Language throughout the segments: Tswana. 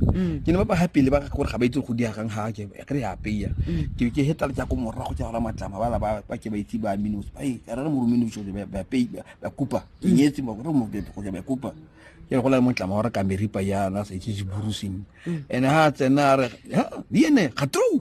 mm. ke ne ba ba happy le ba gore ga ba itse go diagang ha ke re ya peya mm. ke ke heta le tsa ko morra go tsaya matlama ba ba ba ke ba itse ba minus ba e re mo minus jo ba ba pay ba kupa ke mm. nyetse mo gore mo be go ba kupa ke go la mo tlama gore ka meripa ya na se ke burusing ene ha tsena re ha di ene ga true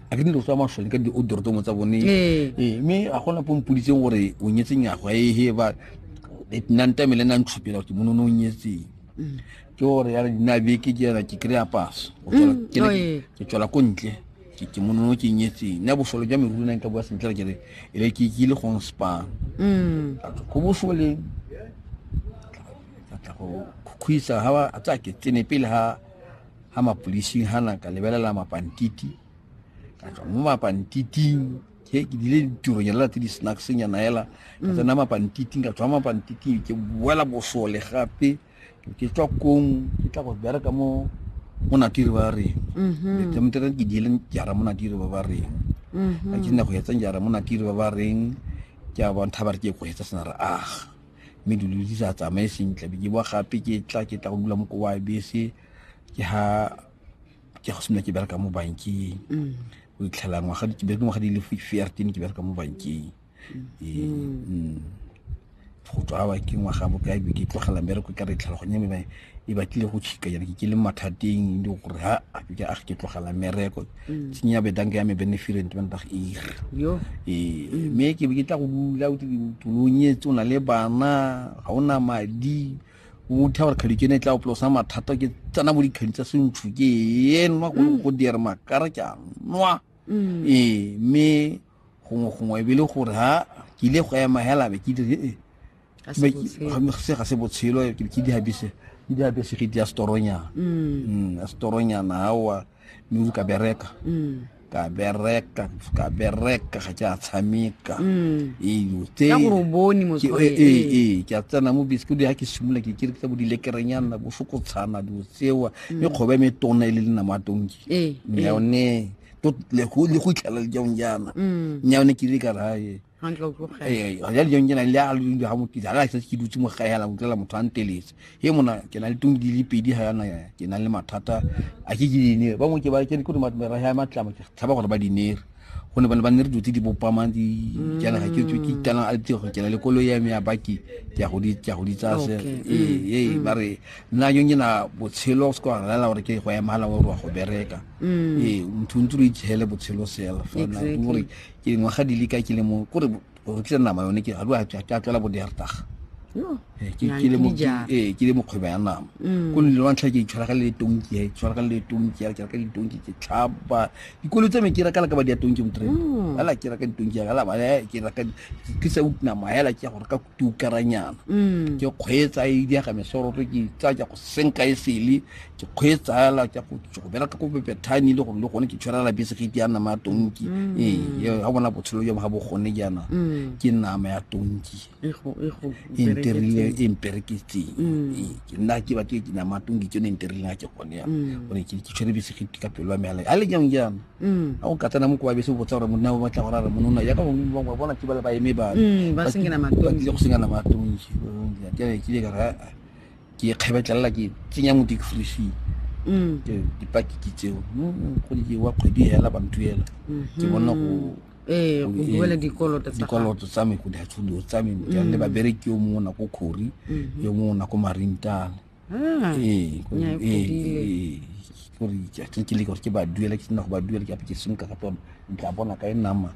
a ke dilo tsa masole ka di-odortomo tsa bone ee. ee mme a gona po mpoditseng gore o nyetse nyago a ehe ba nantame le nantshupela gore ke mono ne o nyetseng mm. ke gore yare dina beke ke yana ke kry-a paso mm, ke tswela ko ntle ke monono ke nyetseng nna bosole jwa meruri nang ka bua sentle re kere e le ke ile gong spa mm. go bosoleng tla go khuisa ga tsa ke tsene pele ga ha mapodising hana ka lebelela mapantiti ka tswa mo mapantiting ke ke dile ditironyana tse di snacksnyana hela ka mm. tsena mapantiting ka tswa mapantiting ke boela bosole gape ke tswa kong ke tla go bereka mo mo natiri ba reng letemtere mm-hmm. ke diele jara mo natiri ba ba reng mm-hmm. ka ke nna go etsang jara mo natiri ba ba reng ke a bontsha ba re ke go etsa sena re aga mme dilo di sa tsamaye sentle be ke boa gape ke tla ke tla go dula mo kowa bese ke ha ke go simolola ke bereka mo bankeng mm. o itlhela ngwaga ke bereka ngwaga di le fifteen ke bereka mo bankeng mm. ee, mm. go tswa ba ke ngwaga bokae be ke tlogela mmereko ka re tlhela go nyeme e batlile go tšhika jana ke ke le mathateng le gore ha ke a ke tlogela mereko mm. tsenya bedanka ya me beneferent ba nta ir ee mm. mme ke be ke tla go bula tolonyetse o na le bana ga o na madi o tha gore kgadi ke ne e tla o plosa mathata ke tsena mo dikgadi tsa sentšhu ke enwa go mm. go dira makara ke a nwa ee mme gongwe gongwe e be le gore ha ke ile go ema hela be ke dire ee se ga se botshelo ke dihabise ke dihabise ke di ya storonyana mm. mm, storonyana awa mme ka bereka mm. ka bereka ka bereka ga ke a tshameka mm. eyo tse e, e, e, ke a tsena mo bese ke di ha ke simolola ke kere ke tsa bo dilekerenyana bo fokotshana dilo tsewa mm. mme kgoba e metona e le lena mo atonki yone le go itlhela le jaong jaana mm. yone ke ile ka raye ee, ya dijong ke na le a le ga mokitse ga se ke dutse mo gae la utlwela motho a nteletse he mona ke na le tong di le pedi ga yana ke na le mathata a ke ke dinere ba ke ba ke ke ma mera ya matlamo ke tshaba gore ba dinere go ne ba ne ba ne re dutse di bopamang di jana ga ke tswe ke itana a tse go kena le kolo ya me ya baki ke go di ke go di tsaya se ee mm, ee mm. ba re nna yo ke na botshelo se kwa rela gore ke go ya mala wa go bereka mm. ee mthuntsuru itshele botshelo sela fa na gore ke dingwaga di le ka ke le mo kore go rekisa nama yone ke ga ke a tlwela bo dertaga ee ke le mokgwebo ya nama mm. ko nle wa ntlha ke itshwara ka le tonki ya itshwara ka le tonki ya ka ditonki ke tlhaba dikolo tsa me ke raka la ka ba di ya tonki mo trela mm. ala ke raka ditonki ya ala ba ke raka ke sa utna ma ya la ke gore ka tukaranyana mm. ke kgweetsa e di ga mesoroto ke tsaya ke go senka e sele ke kgweetsa ela ke go go bela ka go bebethane le gore le gone ke tshwarela bese ge ke ya nama ya tonki mm. ee ga bona botshelo jo ga bo gone jaana mm. ke nama ya tonki e nterile e mpereketseng ee, ke nna ke ba ke nama ya tonki ke yone e nterileng ga ke gone yana gore ke tshwere bese ge ka pelo ya meala a le jang jaana Mm. a go katana mo koba bese o botsa gore monna o batla gore a re monona yaka bangwe ba bangwe bona ke bale ba eme ba Mm, ba sengela matonki. ba tlile go sengana matonki jale ke ile ka re "Ah, ke e kgebetlelela ke tsenya mo dikfrishing Mm. ke dipakiki tseo Mm, go di wa kgwedi hela bantuela ke bona go ee go go- ee, duela dikoloto tsa gago. dikoloto tsa me go dihatshulo tsa me jale le babereki yo mongwe o nako khori Mhm. yo mongwe o nako marintana Ah, ee ko- nya e ee, fodile. ee, gore ke- ke kile gore ke ba duela ke sena go ba duela ke ape ke senka gape one ke tla bona ka e nama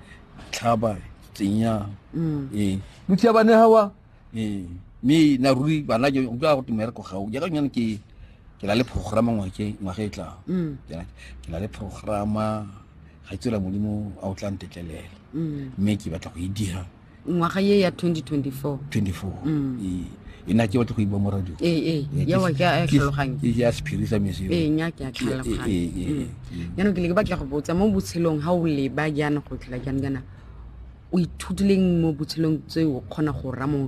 tlhaba tsenya Mm. ee mothiya bane gawa ee mme na ruri bana ke utlwa go tumereko gao jaaka nyane ke ke na le programa ngwake ngwaga e tlang Mm. ke na- ke na le programa ga e tswela modimo a o tla ntetlelela Mm. mme ke batla go e dira ngwaga ye ya 2024 24 Mm. Ee. e na ke batle go iba mo radio ee ee Ee, ke- yawa ke a e ke- tlhaloganya ke ya sephiri sa mese ee nya ke a Ke- ee, tlhaloganya ee, ee, Mm. ee. jaanong ke le ke batla go botsa mo botshelong ga o leba jaana go tlhola jaana jaana o ithutileng mo botshelong tse o kgona go ramo